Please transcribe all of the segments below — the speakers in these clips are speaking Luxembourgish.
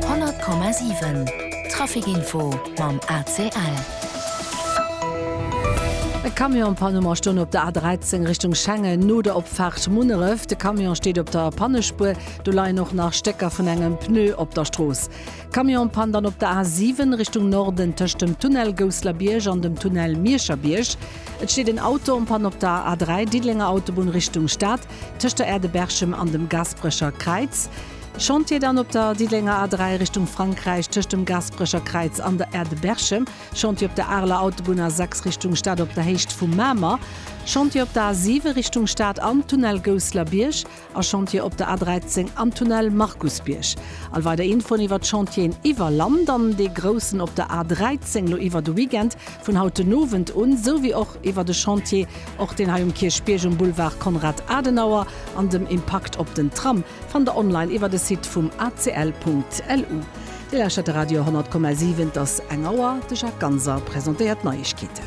100,7 Trafic Info mam ACL. E Camion-Panne um Astoun op der A13 Richtung Schengen, no der Opfaart Munneref. De Camion steet op der Pannespuer, do leien och nach Stécker vun engem Pneu op der Strooss. Camion-Pann dann op der A7 Richtung Norden tëscht dem Tunnel Gousslerbierg an dem Tunnel Miescherbierg. Et steet en Auto en panne op der A3 Diddelenger Autobunn Richtung Stad. tëscht der Aire de Berchem an dem Gasperecher Kräiz, Chantier dann op der Diddelenger A3 Richtung Frankräich tëscht dem Gasperecher Kräiz an der Aire de Berchem, Chantier op der Areler Autobunn A6 Richtung Stad op der Héicht vu Mamer, Chantier op der A7 Richtung Stad am Tunnel Gousseler Bierg a Chantier op der A13 am Tunnel Markusbierg. All weider Infoen iwwer d'Chantieren iwwer Land an dee groussen op der A13 lo iwwer de Weekend vun haut den Owend un, esou wéi och iwwer de Chantier, och deen hei um Kierchbierg um Boulevard Konrad Adenauer, an dem Impakt op den Tram fannt der online iwwer de Site vum acl.lu. Dir lauschtert de Radio 100,7, et ass eng Auer, de Jacques Ganser presentéiert d'Neiegkeeten.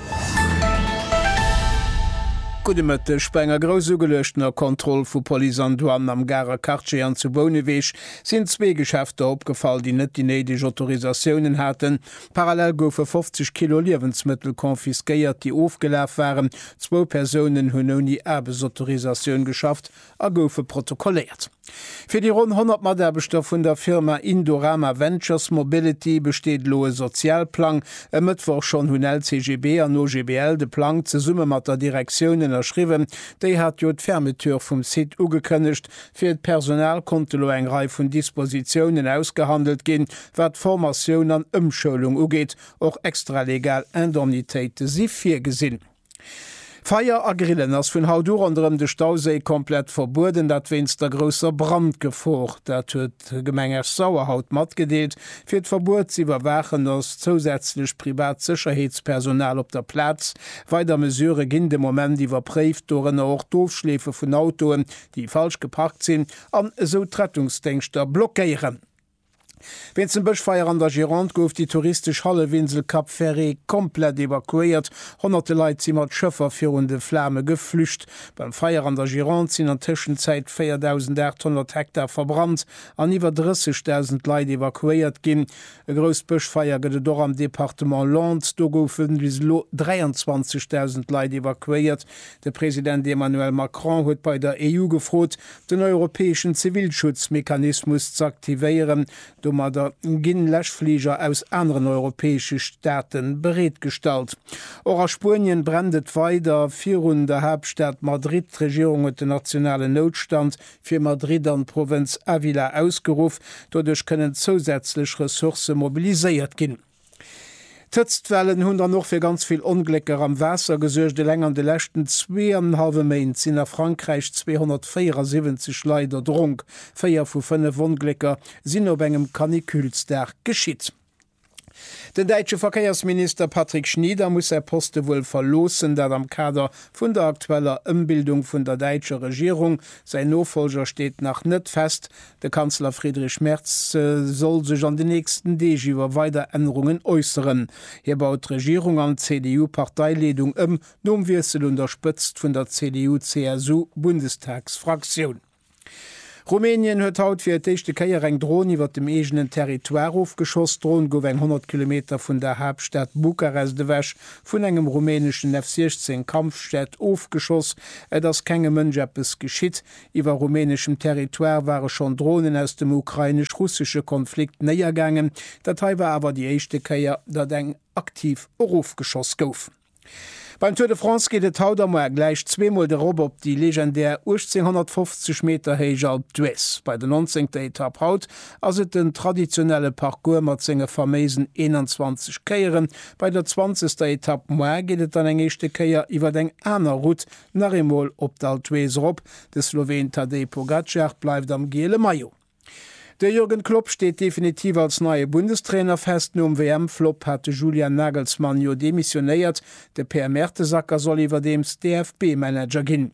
Gudde Mëtteg, Bei enger grouss ugeluechtener Kontroll vu Police an Douane am Garer Quartier an zu Bouneweg sinn zwee Geschäfter opgefall, déi net déi néideg Autorisatiounen haten, Parallel goufe 50 Kilo Liewensmëttel confisquéiert, déi ofgelaf waren. Zwou Persounen hunn ouni Aarbechtsautorisatioun geschafft a goufe protokolléiert. Fir déi ronn 100 Mataarbechter vun der Firma Indorama Ventures Mobility besteet elo e Sozialplang. E Mëttwoch schonn hunn LCGB an OGBL de Plang zesumme mat der Direktioun ënnerschriwwen. Déi hat jo d'Fermeture vum Site ugekënnegt. Fir d'Personal konnte lo eng Rei vun Dispositiounen ausgehandelt ginn, Wat Formatioun an Ëmschoulung ugeet, och extralegal Indemnitéite si virgesinn. Feier a Grillen ass vun haut u ronderëm de Stauséi komplett verbueden, dat wéinst der grousser Brandgefor. Dat huet d'Gemeng Esch-Sauer haut matgedeelt. Fir d'Verbuet ze iwwerwaachen ass zousätzlech privat Sécherheetspersonal op der Plaz. Weider Mesurë ginn de Moment iwwerpréift, dorënner och d'Ofschleefe vun Autoen, déi falsch geparkt sinn an esou d'Rettungsdéngschter blockéieren. Wéinst dem Bëschfeier an der Gironde gouf déi touristesch Hallefinsel Cap Ferré komplett evakuéiert. Honnerte Leit si mat Schëffer virun de Flame geflücht. Beim Feier an der Gironde sinn an Tëschenzäit 4.800 Hektar verbrannt an iwwer 30.000 Leit evakuéiert ginn. E grousst Bëschfeier gëtt et och am Departement Landes. Do goufe bis elo 23.000 Leit evakuéiert. De President Emmanuel Macron huet bei der EU gefrot, den europäeschen Zivilschutzmechanismus z'aktivéieren. Domadder ginn Läschfliger aus aneren europäesche Staate bereetgestallt. Och a Spuenien brennt et weider virun der Haaptstad Madrid. D'Regierung huet den nationalen Noutstand fir Madrid an d'Provënz Ávila ausgeruff. Doduerch kënnen zousätzlech Ressourcë mobiliséiert ginn. D'Hëtztwellen hunn dann och fir ganz vill Onglécker am Waasser gesuergt. Eleng an de leschten zwee an en hallwe Méint sinn a Frankräich 274 Leit erdronk. Véier vu fënnef Onglécker sinn op engem Caniculesdag geschitt. Den däitsche Verkéiersminister Patrick Schnieder muss säi Poste wuel verloossen, dat am Kader vun der aktueller Ëmbildung vun der däitscher Regierung. Säin Nofolger steet nach net fest. De Kanzler Friedrich Merz soll sech an den nächsten Deeg iwwer weider Ännerungen äusseren. Hie baut d'Regierung an d'CDU-Parteileedung ëm, nom Wiessel un der Spëtzt vun der CDU-CSU-Bundestagsfraktioun. Rumänien huet haut fir d'éischte Kéier eng Dron iwwer dem eegenen Territoire ofgeschoss. D'Dron gouf eng 100 Kilometer vun der Haaptstad Bukarest ewech vun engem rumäneschen F-16 Kampfjet ofgeschoss. Et ass kengem Mënsch eppes geschitt. Iwwer rumäneschem Territoire ware schonn Dronen aus dem ukrainesch-russesche Konflikt néiergaangen. Dat hei war awer déi éischte Kéier, datt eng aktiv erofgeschoss gouf. Beim Tour de France geet et haut am Moar gläich zweemol de Rob op déi legendär 1850 Meter héich Alpe d'Huez. Bei der nonzéngter Etapp haut ass et den traditionelle Parcours mat senge faméisen 21 Kéieren. Bei der zwanzegster Etapp moar geet et dann eng éischte Kéier iwwer eng aner Route Nach eemol op d'Alpe d'Huez erop, de Sloween Tadej Pogacar bleift am giele Maillot. De Jürgen Klopp steet definitiv als neie Bundestrainer fest. Nom WM-Flop hat de Julian Nagelsmann jo demissionéiert. De Per Mertesacker soll iwwerdeems DFB-Manager ginn.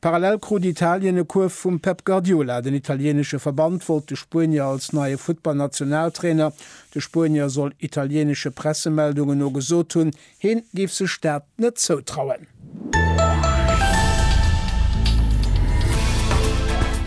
Parallel krut Italien e Kuerf vum Pep Guardiola. Den italieenesche Verband wollt de Spuenier als neie Futtball-Nationaltrainer. De Spuenier soll italieenesche Pressemeldungen no gesot hunn, Hien géif sech dat net zoutrauen.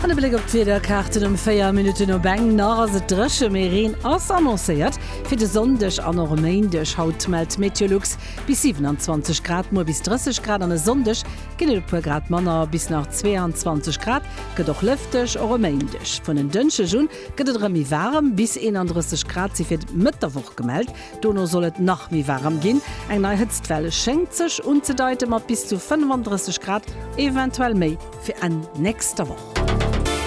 An e Bléck op d'Wiederkaarten, Ëm 4 Minutten op eng nach ass et dréche, mee Reen ass annoncéiert fir de Sonndeg an och e Méindeg. Haut mellt Meteolux bis 27 Grad, muer bis 30 Grad an e Sonndeg ginn et e puer Grad manner, bis nach 22 Grad. Gëtt och lëfteg, och e Méindeg. Vun en Dënschdeg un gëtt et erëm méi waarem, bis 31 Grad si fir d'Mëtt der Woch gemellt. Dono soll et nach méi waarem ginn, eng nei Hëtztwell schéngt sech unzedeiten, mat bis zu 35 Grad, eventuell méi, fir Enn nächster Woch.